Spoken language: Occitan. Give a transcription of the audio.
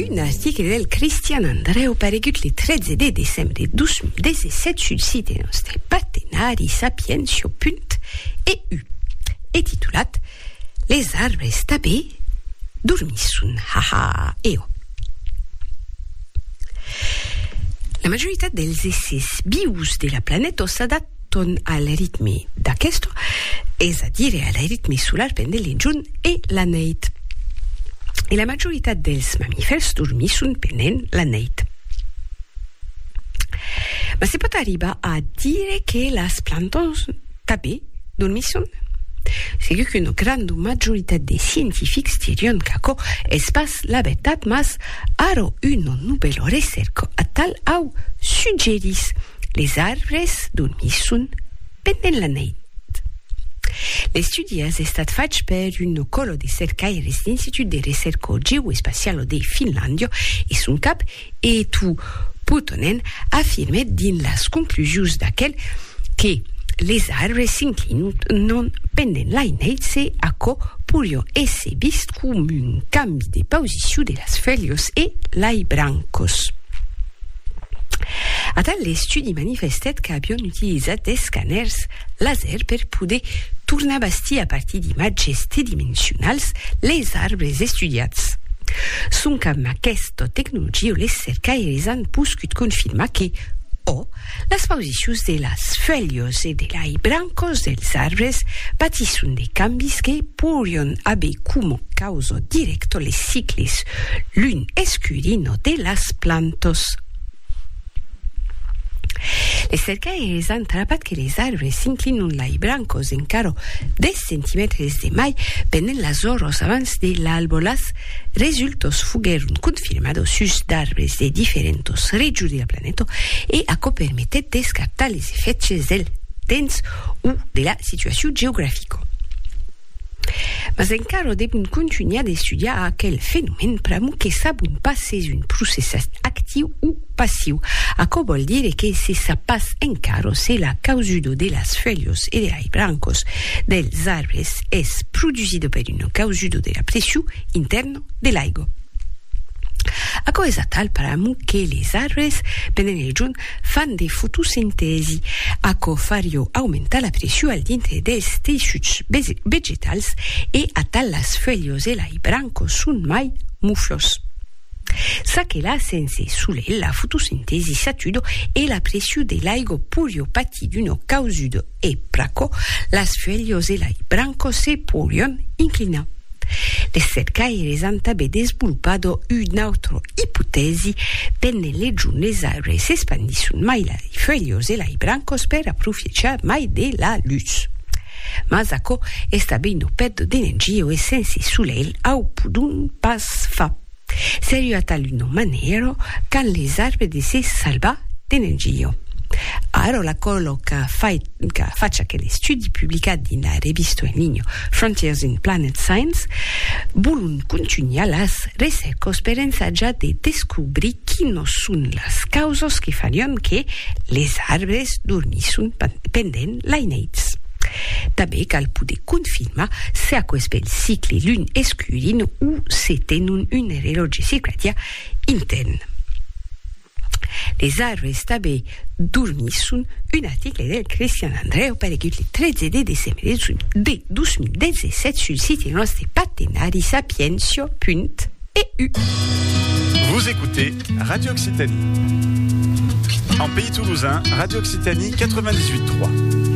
Un article del Cristian Andrèu paregut le 13 de decembre 2017 sul site nòste partenari sapientia.eu e titulat Les arbres tanben dormisson, ha ha e ò. La majoritat dels èssers vius de la planeta s'adaptan ton al ritme d'aquesto, es a dire al ritme solar pendent l'enjorn e la neit. E la majoritat dels mamifèrs dormisson pendent la neit. Mas se pòt arribar a dire que las plantons tanben dormisson? Segur qu'una granda majoritat de scientifics dirion qu'aquò es pas la vertat mas ara una novèla recèrca atal au suggerís. Les arbres dormisson pendent la neit. L'estudi as estat fach per un còlo de cercaires d'Institut de Recerco Geoespacialo de Finlàndia e son cap, Eetu Puttonen, afirmèt dins las conclusions d'aquel que les arbres s'inclinon pendent lai neits e aquò porion èsser vist com un cambi de pausicion de las felhas e lai brancas. Atal l'estudi manifestèt qu'avion utilizat d'escanèrs laser per poder tornar bastir a partir d'imatges tridimensionals les arbres estudiats. Sonque amb aquesta tecnologia, les cercaires an poscut confirmar que, ò, Las pausicions de las fuèlhas e de lai brancas dels arbres patisson de cambis que poirián aver coma causa dirècta les cicles lun escurina de las plantas. Les cercaires an trapat que les arbres s'inclinan lai brancas encara 10 centimètres de mai pendent las oras abans de l'alba, las Resultos foguèron confirmados sus d'arbres de diferentos regions de la planeta e aquò permetèt d'escartar les efèchs del temps o de la situacion geografica. Mas encara devon contunhar d'estudiar aquel fenomèn pr'amor que sabon pas s'es un processat actiu o Passiu. Aquò vòl dire que se sap pas encara se la causudo de las fuèlhos e de lai brancos dels arbres es produsida per una causudo de la pressiu intèrna de l'aigua. Aquò es atal paramo que les arbres, pendent el jorn, fan de fotosintèsi. Aquò farió aumentar la pressiu al dintre dels teissuts vegetals e atal las fuèlhos e lai brancos son mai muflhos. Ça que la sense solelh, la fotosintesi s'atudo e la pressiu de l'aigo porio patir d'uno causudo e pr'aquò las fuelhos e lai brancos se porion inclinar. Les cercaires an tabé desvolpado un autre ipotèsi pendent les jornes aire s'espandisson mai lai fuelhos e lai brancos per aprofiechar mai de la lutz. Mas aquò es tanben lo pèdo de Nenjio e sense solelh au podon pas far. Sèri atal un òme nèro qu'an les arbres de se salvar de Nenjio. Ara la còlo qu'a fach aquel estudi publicat dins la revista en linha Frontiers in Planet Science volon contunhar las recèrcas per ensajar de descobrir quinos son las causas que farián que les arbres dormisson pendent l'aineits. Tanben cal poder confirmar se aquò es ben cicle lun escurin o se tenon un relòtge circadià intèrn. Les arbres tanben dormisson, un article del Cristian Andreu paregut le 13 de decembre de 2017 sul site nòste partenari sapientia.eu. Vous écoutez Radio Occitanie. En Pays Toulousain, Radio Occitanie 98.3.